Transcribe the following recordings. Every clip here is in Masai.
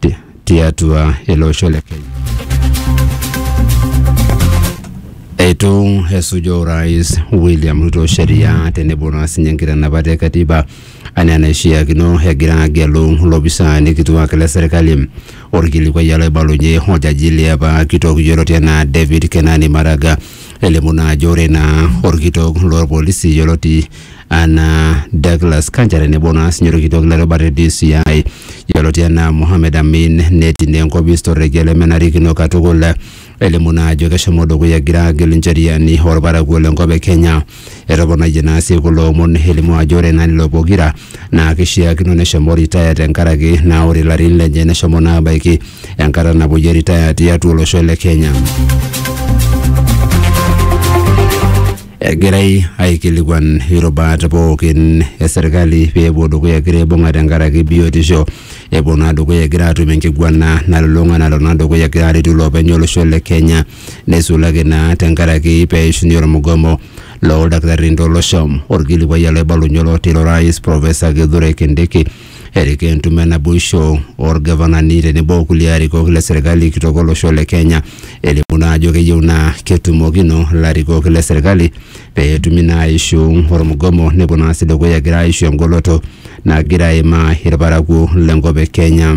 ti- tiatua ele osho le Kenya. Eitu esuja orais William Ruto sheria tenebo naa sinye nkitanapat e katiba anaa enaishiakino egira agelu ilopisaani kituak le serkali. Orkilikuai olaibalunye oljaji liapa kitok yioloti anaa David Kenani Maraga elimu naa ajo ore naa orkitok lorpolisi yioloti anaa Douglas Kanja tenebo naa sinye orkitok le rubata e DCI yioloti enaa Mohamed Amin netii naa enkopis torrekie lemenarikino katukul elimu naa ajo keshomo dukuya egira agelu ncheriani orparakuo lenkop e Kenya. Etoponayie naa sii kulo omon elimu ajo ore naa lelo pokira naa kishiakino neshomo retire tenkaraki naa ore ilarin lenye neshomo naa abaiki enkata napuoyie retire tiatua olosho le Kenya. Egirai aikilikuan irubat pookin e serkali pee epuo dukuya egira aibung'a tenkaraki biotisho. Epuo naa dukuya egira aatum enkiguana nalulung'a nalo naa dukuya egira aretu iloopeny olosho le Kenya neisulaki naa tenkaraki pee eishunye ormugomo looldakitarini tolosho. Orkilikuai ele oibalunye olotii ilo rais Professor Kithure Kindiki erik entumo enaboisho orgavanani tenebo kulie arikok le serkali kitok olosho le Kenya elimu naa ajo keyieu naa ketumokino ilarikok le serkali pee etumi naa aishu ormugomo nepuo naa sii dukuya egira aishu engoloto nagira aimaa irparakuo lenkop e Kenya.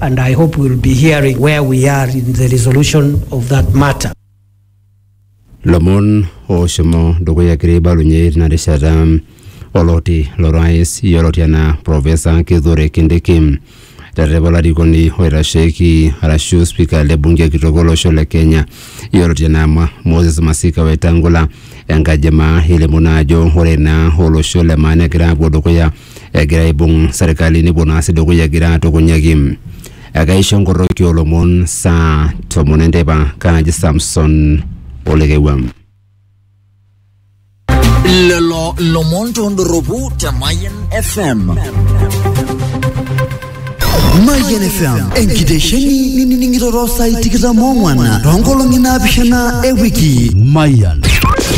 And I hope we'll be hearing where we are in the resolution of that matter. lomon oshomo dukuya kiri balunye tina rishata oloti lorais yioloti anaa profesa kithure kindiki terrepa olarikoni oitasheki arashu spika le bunge kitok olosho le kenya yioloti anaa Ma- moses masika wetangula enkaji emaa elimu naa ajo ore naa olosho le maa negira apuo dukuya egira aibung serkali nepuo naa sii dukuya egira atukunyaki ekaisho nkoroki olomon saa tomon enteipa kaaji Samson Olekewam. Lelo lomon tondoropu te Mayan FM. Mayian FM enkitesheni nining'iroro saai tikitam ong'wan toonkolong'i naapishana e wiki. Mayian.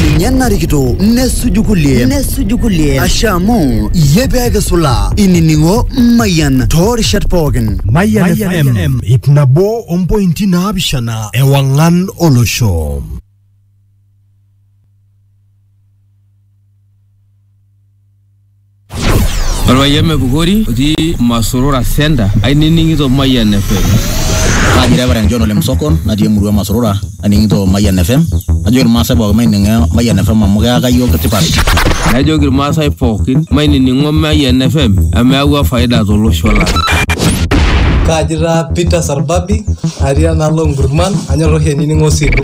Ninye narikito nesuju kulie nesuju kulie ashe amu iyie pee kisula inining'o Mayian toorishat pookin. Mayian FM ip nabo ompointi naapishana ewang'an olosho. Orpayian Mepukori otii Masurura Center ainining'ito Mayian FM. Kaji Reverend John Ole Msokon natii emurua e Masurura aning'ito Mayian FM. Najoki Irmaasai pookin maining'o Mayian FM amu keyaka iyiook tipat. Najoki Irmaasai pookin mainining'o Mayian FM amu eyawua faida tolosho lang. Kaji taa Peter Sarbabi atii enaalo Nkurman anyor oshi ainining'o Osilu.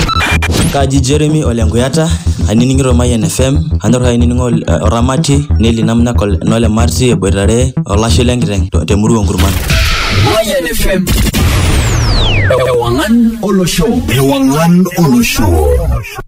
Kaji Jeremy Ole Nkuyata ainining'ito Mayian FM anyor ainining'o oramati Nelly Namnyak Nole Marti eboitare olashe lenkiteng te murua Nkurman. Mayan FM. Ewangan Olosho. Ewangan Olosho.